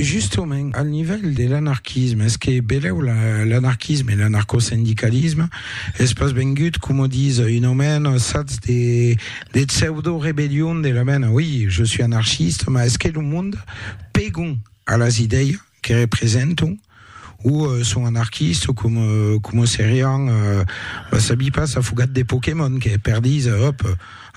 Justement, al nivèl de l'anarquisme, es que belèu l'anarquisme e l'anarcosindicalisme es pas vengut, coma dis un omèn, sats de pseudo-rebellion de la mena, oi, je suis anarchiste, mas es que lo monde pegon a las idèias, que representam o son anarquistes o com, como serián, va sabi pas, afogat de Pokémon que perdís, òp,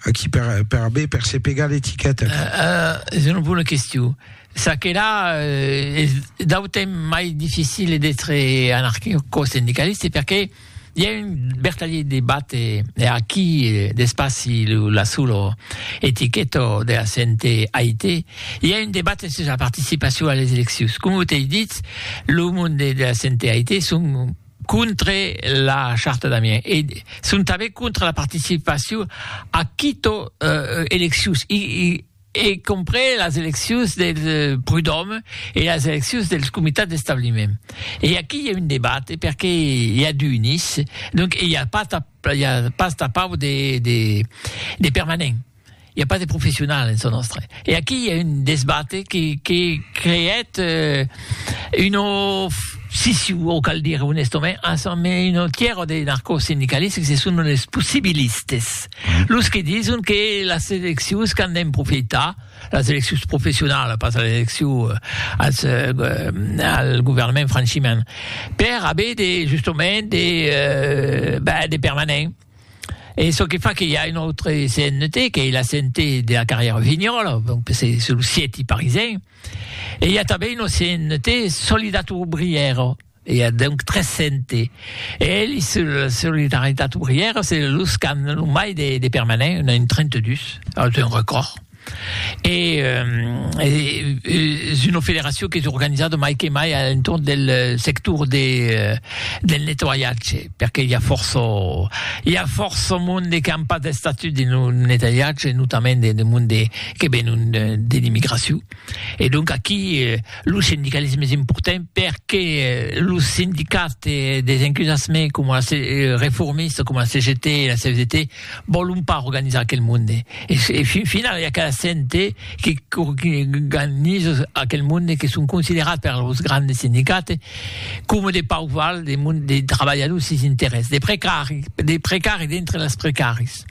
aquí per, per aver per se pegar l'etiqueta. Uh, uh, es una bona question. Ça que là, uh, es d'autem mai difficile d'être anarquico-sindicaliste perché I a un vertadier debat e aquí d'espaci lo la solo etiqueto de la CNT AIT i a un debat sus la participacion a les eleccions. Com o t'ei ditz, lo monde de la CNT AIT son contre la charta d'Amiens e son tanben contre la participacion a quito eleccions. I, i, e comprés las eleccions del Prud'Òme e las eleccions dels comitats d'establiment. E aquí i a un debate perque i a d'unis, donc i a pas ta i a pas ta pau de de de permanents, i a pas de professionals en çò nòstre. E aquí i a un desbate que que creèt un of siciu o cal dire onestament, un autièr de narcosindicalistes que se son los possibilistes. Los que dison que las eleccions qu'an d'en profitar, las eleccions professionalas, pas las eleccions eh, als, eh, al governament franchiment, per haver de, justament, de, eh, ben, de permanents. E çò que fa que hi a un autre CNT, que la CNT de la carrière Vignola, donc c'est sur le siète parisien, e hi a tanben un CNT Solidat Obriero, I a donc 300 e elis se la solidaritat obrièra se los qu'an lo mai de, de permanent, un a un 32, es un record. E es una federacion qu'es organizada mai que mai a l'entorn del sector de, del nettoiatge, perque i a fòrça, i a fòrça monde qu'an pas d'estatut dins lo nettoiatge, notament de monde que venon de l'immigracion. E donc aquí lo sindicalisme es important perque lo sindicat des encusassement com la reformista com la CGT e la CFDT vòlon pas organizar aquel monde e fin final i a cada sente que organiza aquel monde que son considerats per los grandes sindicats com de pauc val de trabalhadors sis interès de precari de precari dintre les precaris.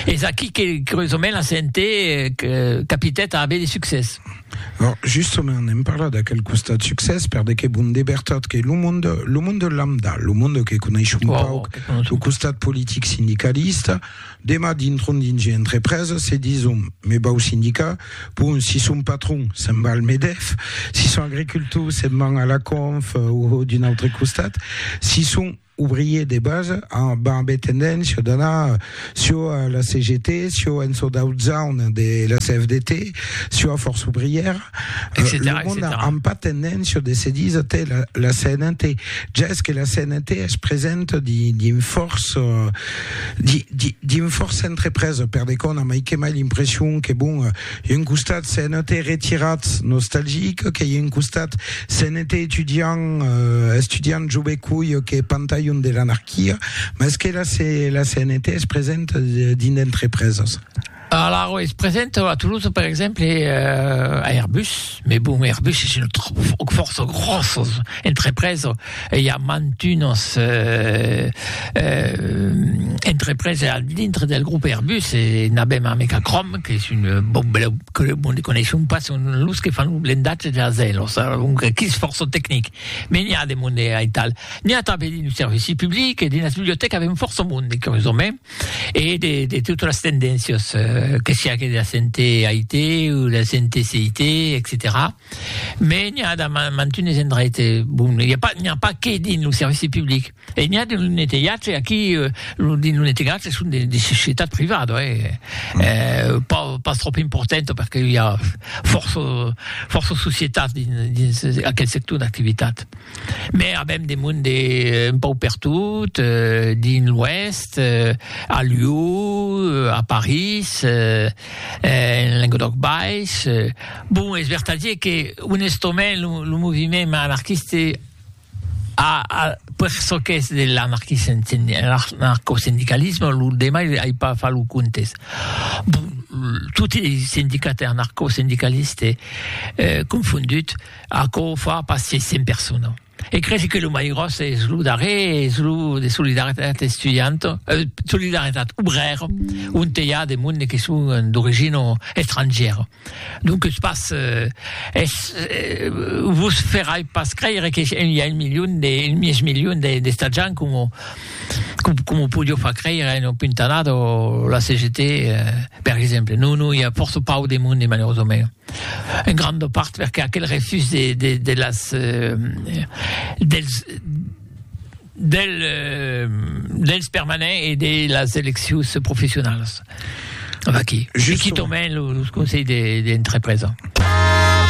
Es aquí que, curiosament, la CNT capitèt a aver de succès. Or, justament, n'èm parlat d'aquel costat succès, per de que bon de vertat que lo monde, lo monde lambda, lo monde que coneishon wow, pauc, lo costat politic sindicalista, demà dintron dins un entrepresa, se dison, me vau sindicar, bon, si son patron, se'n va al Medef, si son agricultor, se'n van a la Conf, o d'un autre costat, si son... ouvrier de base, amb ambé tendéncia d'anar sio a la CGT, sio en çò d'aut zaun de la CFDT, sio a Força Ouvrièra, lo mond amb pas tendéncia de se díser tè la CNT, ja es que la CNT es presenta dins fòrça, dins fòrça entrepresa, per de còna, mai que mai l'impression que bon, Ieu un costat se'n ète retirat nostalgic, que ieu un costat se'n ète etudiant, estudiant jove coi que pantalhon de l'anarquia, mas que la, la CNT es present dins d'entrepresas. Alors, es present a Toulouse, per exemple, a Airbus, mais bon, Airbus es une fòrça gròssa entrepresa, Ei a mantunas entrepreses al dintre del grop Airbus e n'avem amec a Crom, qu'es un bon beleu club onde coneishon pas son los que fan lo blendatge de las ailhos, alonque que's fòrça tecnic. Me n'i a de monde aital. N'i a tanben dins lo servici public e dins las bibliotècas avem fòrça monde, curiosament, e de de totas las tendéncias, que siá que de la CNT, AIT, o de la CNT, CIT, etcetèra. Mais n'i a damb mantunes endraite, bon, n'i a pas, n'i a pas que dins lo servici public, e n'i a dins lo netelhatge, aquí, lo, dins lo netelhatge son de, de societat privada, hè, eh, pas, pas tròp importanta, perque i a fòrça, fòrça societats dins, dins aquel sector d'activitat. Mais avèm de monde un pauc pertot, dins l'Oèst, a Lió, a París, En Lenguedòc Baish, bon, es vertadier que onestament lo moviment anarquiste a per çò qu'es de l'anarcosindicalisme, lo demai ai pas fach lo comptes, bon, toti es sindicats e anarcosindicalistes confondut, aquò o fa pas 600 personas. E cresi que lo mai gròs es lo darrer, es lo de Solidaritat Estudianto, eh, Solidaritat Obrèro, onte i a de monde que son d'origina estrangièra. Donques pas, eh, es, eh, vos ferai pas creire que i a un milion de, un mièg milion de, d'esta gent coma, coma podió far creire en Puntanada o la CGT, eh, per exemple. Non, non, i a fòrça pauc de monde, malerosament. En granda part perque aquel refús de de de las dels del dels permanents e de las eleccions professionalas. V'aquí. Justement. Quitament los conseils de d'entrepresa.